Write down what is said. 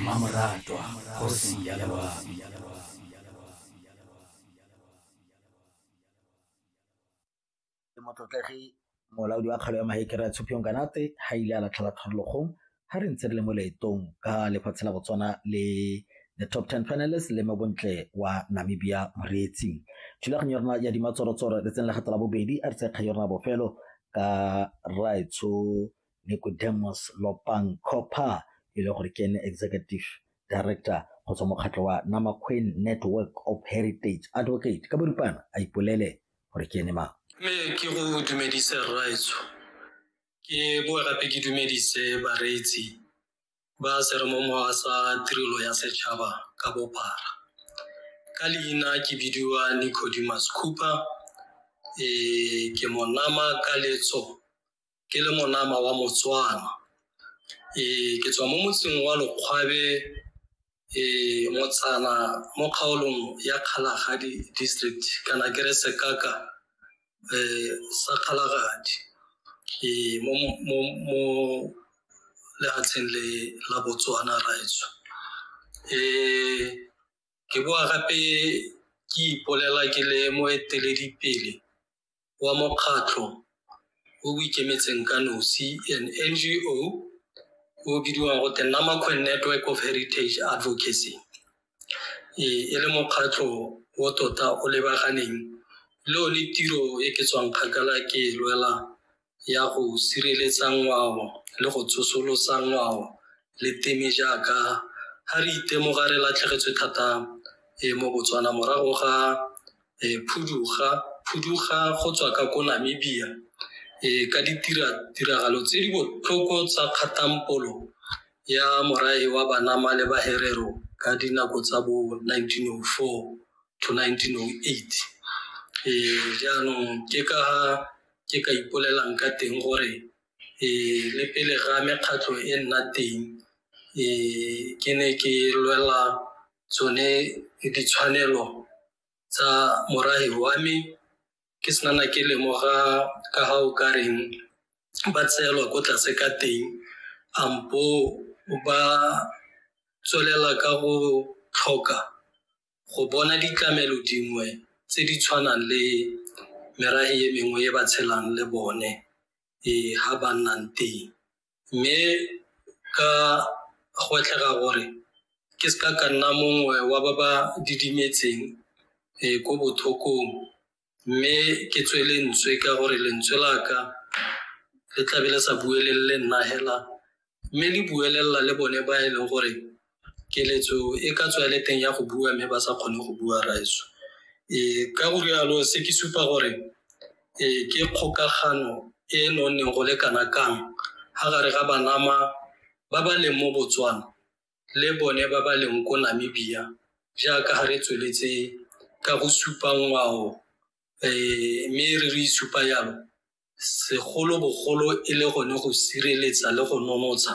mmamoratwa kgosi ya loabi motlotlegi molaodi wa kgalo ya maekere a tshopiong kanate ga ile a latlhela tlhorologong ga re ntse re le mo leetong ka lefatshe la botswana le the top 10 panelist le mabontle wa namibia moreetsi thulaganyo ya rona ya dimatsorotsoro letseng la gato la bobedi a re tsekga ya rona bofelo ka raetsho Nicodemus Lopang Copha e le gore ke ene executive director go tswa mokgatlho wa Namaqueen Network of Heritage Advocate ka boripana a ipolele gore ke ene mang. Mme ke go dumedise rraetsho ke boa gape ke dumedise bareetsi ba seremomowa sa tirelo ya setšhaba ka bophara ka leina ke bidiwa Nicodemus Cooper e ke monama ka letso ke le monama wa motswana ee ke tswa mo motseng wa lokgwabe ee motsana mo kgaolong ya kgalagadi district kana ke re sekaka ee sa kgalagadi ee mo mo mo lefatsheng le la botswana raetsho ee ke boa gape ke ipolela ke le moeteledipele wa mokgatlho o o ikemetseng ka nosi an ngo o bidiwang go te namakwen network of heritage advocacy ee e le mokgatlho o tota o lebaganeng le o ne tiro e ke tswang kgakala ke e lwela ya go sireletsa ngwao le go tsosolosa ngwao le teme jaaka ga re itemoga re latlhegetswe thata e mo botswana morago ga e, phuduga phuduga go tswa ka ko namibia e, ka ditiragalo tse di botlhoko tsa kgatampolo ya morae wa banama le baherero ka dinako tsa bo 1904 to 1908 e, jaanong ke ka ke ka ipolelang ka teng gore e, le pele ga mekgatlho e nna teng e, ke ne ke lwela tsone ditshwanelo tsa morahi wa me ke senana ke lemoga ka ga o ka reng ba tseelwa ko tlase ka teng ampo ba tswelela ka go tlhoka go bona ditlamelo dingwe tse di tshwanang le merahi e mengwe e ba tshelang le bone e ha ba nnang teng mme ka go tlhaka gore ke se ka ka nna mongwe wa ba ba didimetseng um ko bothokong mme ke tswe lentswe ka gore lentswe la ka le tlabe le sa buelelele nna hela mme le buelelela le bone ba e leng gore keletso e ka tswa le teng ya go bua mme ba sa kgone go bua raeso um ka go rialo se ke supa gore um ke kgokagano e e nonneng go le kana kang ga gare ga banama ba ba leng mo botswana le bone ba ba leng ko namibia jaaka ga re tsweletse ka go supa ngwao um mme re re isupa yalo segolobogolo e le gone go sireletsa le go nonotsha